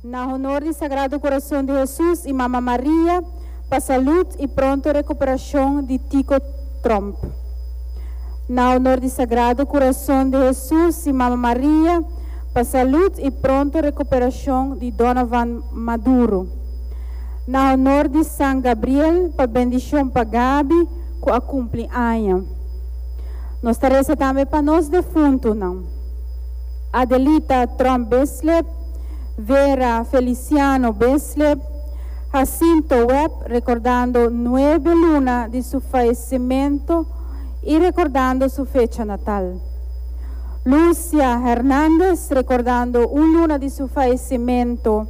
Na honor di Sagrado Corazon di Hesus y Mama Maria pa salud y pronto recuperacion di Tico Trump. Na honor di Sagrado Corazon di Hesus y Mama Maria pa salud y pronto recuperacion di Donovan Maduro. Na honor di San Gabriel pa bendicion pa Gaby cu a cumpli aña. Nos ta reza tambe pa nos defuntonan. Adelita Tromp Besleb, Vera Feliciano Besleb, Jacinto Web recordando nuebe luna di su faecemento y recordando su fecha natal. Lucia Hernandez recordando un luna di su faecemento,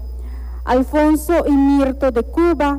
Alfonso y Mirto de Cuba,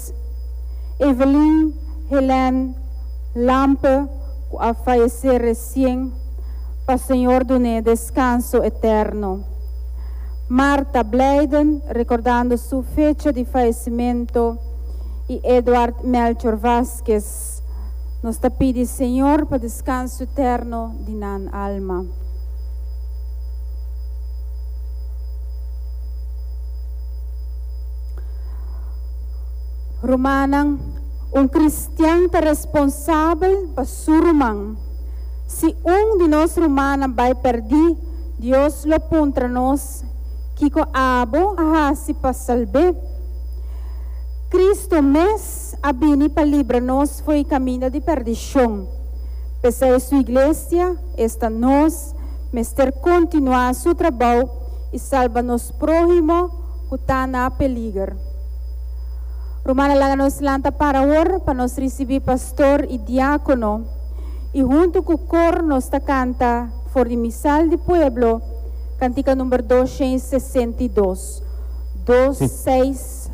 Evelyn Helène Lampe cu a fayece recien, pa Señor dun'e descanso eterno. Martha Blijden recordando su fecha di fayecimento y Edward Melchor Vazquez, nos ta pidi Señor pa descanso eterno di nan alma. Rumannan, Un kristian ta responsabel pa su ruman. Si un di nos rumannan bai pèrdí, Dios lo puntra nos, Kiko abo a hasi pa salb'é? Kristu mes a bini pa libra nos fo'i kaminda di pèrdishon. P'esei su Iglesia, esta nos, mester kontinuá su trabou i salba nos próhimo, ku ta na peliger. Rumannan laga nos lanta para awor pa nos risibí pastor i diákono i huntu ku kor nos ta kanta for di misal di pueblo kantika number dos shen i sesenta i dos, dos seis.